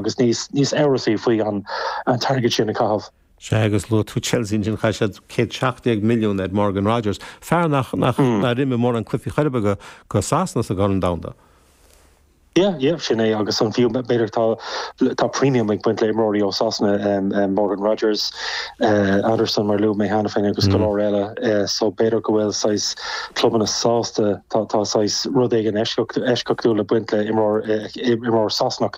agus níos amhrasaí faoin t-airgead sin a chaitheamh. Sea, agus luaigh tú Chelsea ansin, chaith siad céad seacht déag milliún ar Morgan Rogers, fear nach raibh mórán cluichí ar chor ar bith aige do Shasana sa gCorn Domhanda. Sea, sea, sin é, agus an fiú, b'fhéidir, tá premium ag baint le himreoirí ó Sasana, Morgan Rogers, Anderson mar a luaigh mé cheana féin agus go leor eile, so b'fhéidir go bhfuil saghas clubanna sásta, tá saghas rud éigin eisceachtúil ag baint le imreoir Sasanach.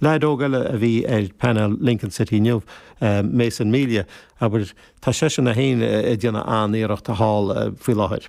Leaid óg eile a bhí ar phainéal Lincoln City inniu, Mason Melia, abair, tá seisean é féin ag déanamh an-iarrachta thall faoi láthair.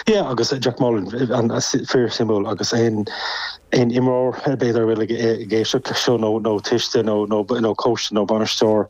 Yeah, agus Jack Moylan, fíorshuimiúil agus aon imreoir, b'fhéidir, a bhfuil ag éisteacht leis seo nó tuiste nó cóiste nó bainisteoir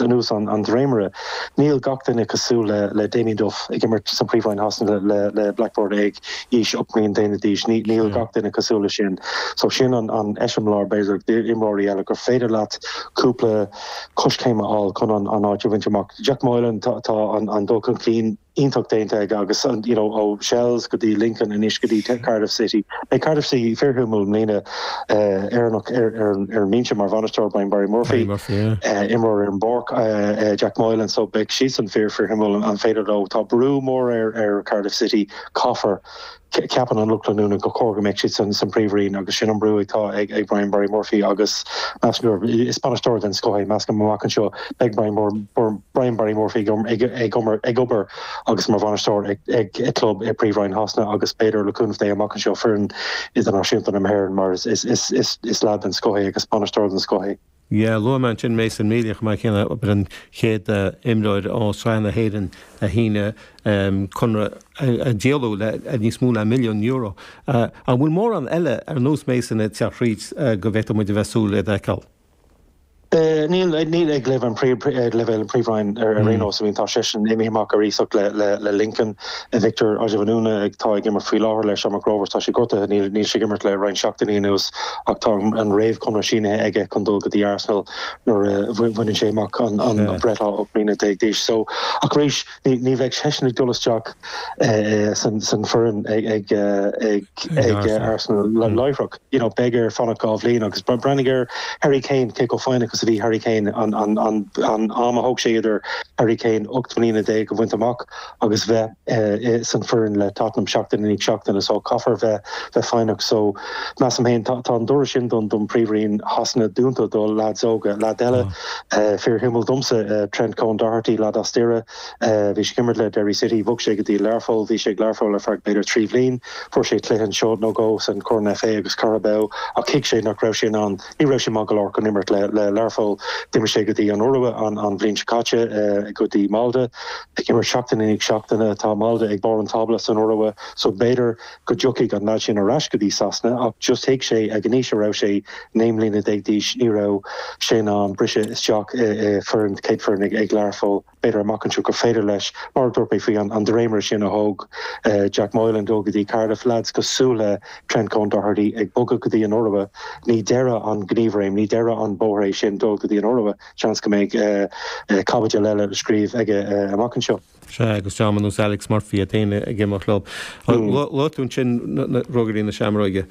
anuas an dréimire. Níl gach duine cosúil le Damien Duff ag imirt sa Phríomhroinn Shasana le Blackburn ag aois 8 mbliana déag d'aois. Níl gach duine cosúil leis sin. So sin an eiseamláir, b'fhéidir, d'imreoirí eile gur féidir leat cúpla coiscéim a fháil chun an áit a bhaint amach. Jack Moylan, tá an dul chun cinn. iontach déanta aige agus you know ó Shells go dtí Lincoln anois go dtí Cardiff City. Beidh Cardiff City fíorshuimiúil i mbliana Éireannach ar ar ar an mbinse mar bhainisteoir Brian Barry Murphy, Barry Murphy yeah. eh, imreoir ar an bpáirc eh, Jack Moylan so beidh siadsan fíor fíorshuimiúil an féidir leo tá brú mór ar ar Cardiff City caithfear Ceapann an lucht leanúna gur chóir go mbeadh siad san príomhroinn agus sin an brú atá ag Brian Barry Murphy agus measaim is bainisteoir den scoth é. Measaim amach anseo beidh Brian Barry Murphy ag obair agus mar bhainisteoir ag club i príomhroinn Shasana agus b'fhéidir le cúnamh Dé amach anseo foireann idirnáisiúnta na hÉireann mar is leaid den scoth é agus bainisteoir den scoth é. Yeah, luaigh mé ansin Mason Melia chomh maith céanna, ab é an chéad imreoir ó Sraith na hÉireann a shínigh conradh, a díoladh le níos mó ná milliún euro. An bhfuil mórán eile ar nós Mason ag teacht thríd go bhféadfadh muid a bheith ag súil iad a fheiceáil? Níl ag leibhéal an Phríomhroinn ar aon nós. Tá seisean imithe amach ar iasacht le Lincoln. Victor Ozhianvuna atá ag imirt faoi láthair le Shamrock Rovers. Tá sé gortaithe, níl níl sé ag imirt le roinnt seachtainí anuas ach tá an an réamhchonradh sínithe aige chun dul go dtí Arsenal nuair a bhain bhaineann sé amach an an an breithlá 18 mbliana d'aois. So ach arís ní ní bheidh seisean ag dul isteach eh san san foireann ag ag ag ag Arsenal láithreach. You know beidh air fanacht dhá bhliain agus ba breathnaigh ar Harry Kane cé chomh foighneach is a bhí Harry Kane an an an an am a thóg sé idir Harry Kane 18 mbliana a bhaint amach. agus bheith san foireann le Tottenham seachtain i ndiaidh seachtaine so caithfear bheith bheith foighneach so measaim fhéin tá tá an doras sin don don príomhroinn Shasana dúnta do leaids óga leaid eile fíorshuimiúil domsa Trent Kone Doherty leaid as Doire bhí sé ag imirt le Derry City bhog sé go dtí Learpholl bhí sé ag Learpholl ar feadh b'fhéidir trí bhliain fuair sé cluiche anseo nó dhó san Corn FA agus Carabao ach thuig sé nach raibh sé in ann Ní raibh sé maith go leor chun imirt le Learpholl. D'imigh sé go dtí an Iorua an bhliain seo caite, go dtí Molde. Ag imirt seachtain i ndiaidh seachtaine, tá Molde ag barr an tábla san Iorua, so b'fhéidir go dtiocfaidh an leaid sin ar ais go dtí Sasana, ach just thuig sé ag an aois a raibh sé, naoi mbliana déag d'aois, ní raibh sé in ann briseadh isteach i foireann, céadfoireann ag Learpholl. b'fhéidir amach anseo gur féidir leis, mar a dúirt mé faoi an dréimire sin a thóg Jack Moylan dul go dtí Cardiff, leaids cosúil le Trent Kone-Doherty ag bogadh go dtí an Iorua, ní deireadh an ghníomhréim, ní deireadh an bhóthair é sin, dul go dtí an Iorua, seans go mbeidh caibidil eile le scríobh aige amach anseo. Sea, agus dream ar nós Alex Murphy iad féin ag imeacht leo. Luaigh tú ansin Ruagairí na Seamróige,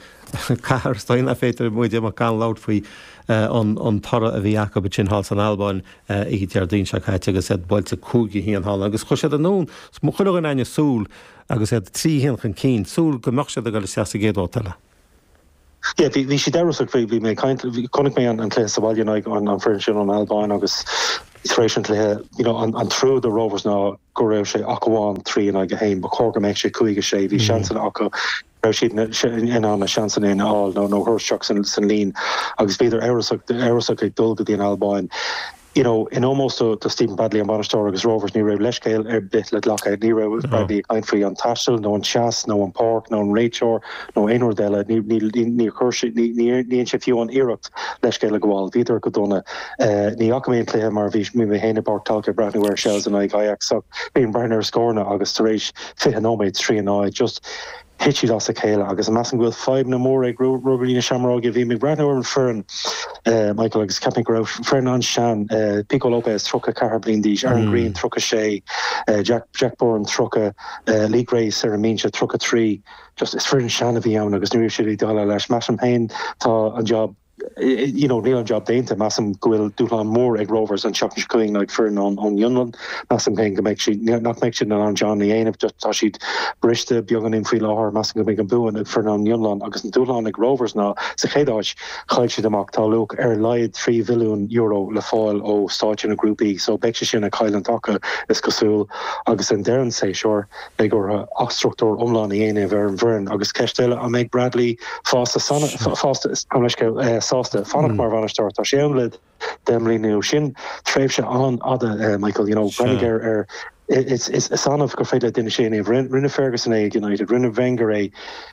cathair is dóigh nach féidir muid imeacht gan labhairt faoi an toradh a bhí acu ansin thall san Albáin oíche Déardaoin seo caite agus iad buailte cúig a haon thall agus chuaigh siad anonn chuile dhuine againn ag súil agus iad trí a haon chun cinn, súil go mbeadh siad ag dul isteach sa gcéad bhabhta eile. Yeah, bhí, bhí siad amhrasach faoi, bhí mé ag caint, chonaic mé an, an cluiche sa bhaile in aghaidh an, an foireann sin ón Albáin agus tar éis an cluiche, you know, an, an trua do Rovers ná go raibh sé ach amháin trí in aghaidh a haon, ba chóir go mbeadh sé cúig a sé, bhí seansanna acu, raibh siad in ann na seansanna a fháil nó a chur isteach san líon agus bhíodar amhrasach ag dul go dtí an Albáin. You know, in ómós do Stephen Bradley an bainisteoir agus Rovers ní raibh leithscéal ar bith le glacadh. Ní raibh Bradley ag caint faoi an taisteal nó an teas nó an páirc nó an réiteoir nó aon rud eile, níor chuir sé, níor dhein sé fiú an iarracht leithscéal a ghabháil. Bhíodar go dona. Ní fhaca mé an cluiche mar bhí mé féin i bPáirc Tolka ag breathnú ar Shels in aghaidh Ajax ach bhí mé ag breathnú ar scóranna agus tar éis 20 nóiméad trí a náid, just thit siad as a chéile agus measaim go bhfuil fadhbanna móra ag Ruagairí na Seamróige, bhí mé ag breathnú ar an foireann Michael agus ceapaim go raibh foireann an-sean, Pico Lopes 34 bliain d'aois, Aaron Greene 36, Jack Jack Byrne 30, Lee Grace ar an mbinse 33, just is foireann sean a bhí ann agus ní raibh siad in ann déileáil leis. Measaim féin tá an jab. Níl an jab déanta. Measaim go bhfuil dúshlán mór ag Rovers an tseachtain seo chugainn in aghaidh foireann ón bhFionlainn. Measaim féin go mbeidh siad, nach mbeidh siad in ann an jab a dhéanamh. Tá siad briste beagáinín faoi láthair. Measaim go mbeidh an bua ag foireann ón bhFionlainn agus an dúshlán ag Rovers ná, sa chéad áit, chaill siad amach, tá luach ar a laghad €3 mhilliún le fáil ó stáitse na grúpaí, só beidh sé sin ag cailliúint acu, is cosúil, agus ag deireadh an séasúr. Beidh orthu athstruchtúr iomlán a dhéanamh ar an bhfoireann agus ceist eile, an mbeidh Bradley fásta, fásta, gabh mo leithscéal, sásta fanacht mar bhainisteoir? Tá sé ann le deich mbliana nó sin, tréimhse an-fhada, a Michael. You know, breathnaigh ar, is annamh gur féidir le duine sin é a dhéanamh. Rinne Ferguson é ag United, rinne Wenger é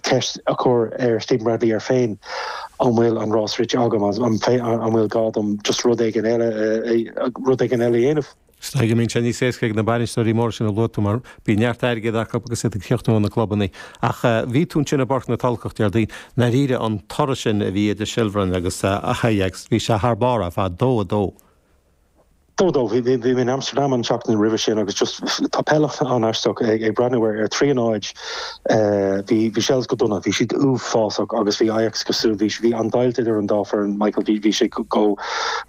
ceist a chur ar Stephen Bradley air féin, an bhfuil an rás rite agamsa, an bhfuil gá dom just rud éigin eile a dhéanamh? Seans go mbíonn sé níos éasca ag na bainisteoirí móra sin a luaigh tú mar bíonn neart airgid acu agus iad ag íoc as na clubanna. Ach bhí tú ansin i bPáirc na Tulchach Déardaoin. I ndáiríre, an toradh sin a bhí idir Shelbourne agus Ajax, bhí sé thar barr ar fad. Dó a dó. Dó, dó, bhí, bhí, bhí mé in Amsterdam an tseachtain roimhe sin agus just, tá peil an-aisteach ag, ag breathnú ar, ar Tríonóid, eh, bhí, bhí Shels go dona, bhí siad uafásach agus bhí Ajax cosúil, bhí, bhí an-deighilt idir an dá foireann, Michael, bhí, bhí sé go, go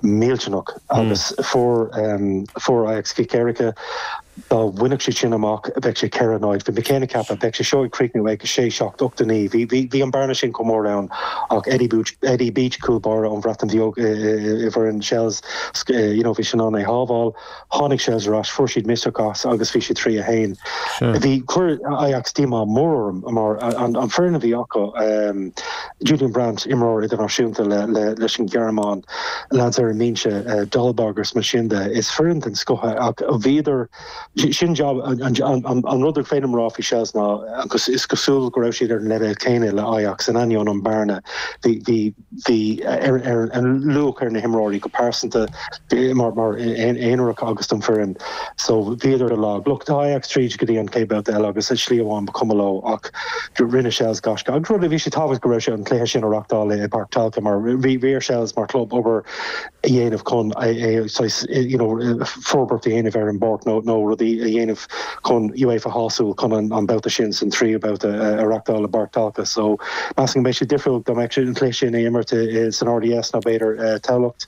millteanach agus fuair, em, fuair Ajax cic éirice dá bhfaigheadh siad sin isteach, bheadh sé ceithre a náid. Bhí mé cineál ag ceapadh, bheadh sé seo ag críochnú ag a sé, seacht, ocht a náid. Bhí, bhí, bhí an bearna sin chomh mór ann ach Eddie Booch, Eddie Beach, cúl báire ón Bhreatain Bheag i, i, i bhfoireann Shels, sc, you know, bhí sé in ann é shábháil. Tháinig Shels ar ais, fuair siad misneach as agus bhí siad trí a haon. Bhí, chuir Ajax díomá mór orm mar, an, an foireann a bhí acu, eh, Julian Brandt, imreoir idirnáisiúnta leis an Ghearmáin, leaids ar an mbinse, Dolberg agus mar sin de. Is foireann den scoth é ach bhíodar, sin é an rud is féidir liom a rá faoi Shels ná is cosúil go raibh siad ar an leibhéal céanna le Ajax, in ainneoin an bhearna bhí ar an luach ar na himreoirí go pearsanta. mar aonar acu agus don foireann so bhíodar lag. Lucht Ajax tríd go dtí an chéad babhta eile agus ar slí amháin ba chuma leo ach gur rinne Shels gaisce. Agus rud a bhí sé tábhachtach go raibh sé an cluiche sin a reachtáil i Páirc Talca mar bhí bhí ar Shels mar chlub obair a dhéanamh chun a é saghas you know forbairt a dhéanamh ar an bpáirc nó nó rudaí a dhéanamh chun UEFA a shásamh chun an an babhta sin san tríú babhta a reachtáil i bPáirc Talca so measaim go mbeadh sé difriúil an cluiche sin a imirt i san RDS nó b'fhéidir Tamhlacht.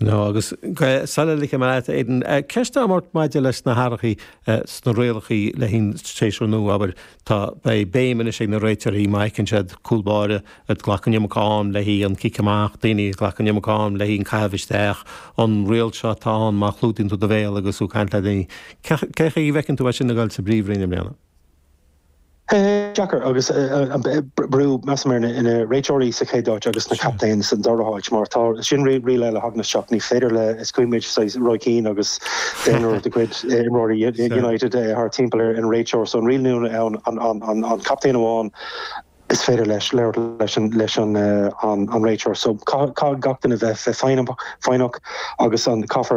No agus sula ligfidh mé leat aon cheist amháin maidir leis na hathruithe sna rialacha le haghaidh an séasúr nua, abair, tá, beidh béim anois ag na réiteoirí má fheiceann siad cúl báire a ghlacann an iomarca am leis an cic amach, daoine a ghlacann an iomarca am leis an caitheamh isteach, an riail seo atá ann má chlúdaíonn tú do bhéal agus tú ag caint le daoine. Cé chaoi a bhfeiceann tú é sin ag dul sa bpríomhroinn i mbliana? deacair agus an brú, measaim, ar na réiteoirí sa chéad áit agus na captaein san dara háit mar tá sin riail eile ag teacht isteach, ní féidir le, is cuimhin linn saghas Roy Keane agus deichniúr de chuid imreoirí United thart timpeall ar an réiteoir so an riail nua ann an captaen amháin is féidir leis labhairt leis leis an réiteoir so caithfidh gach duine bheith foighneach agus an caithfear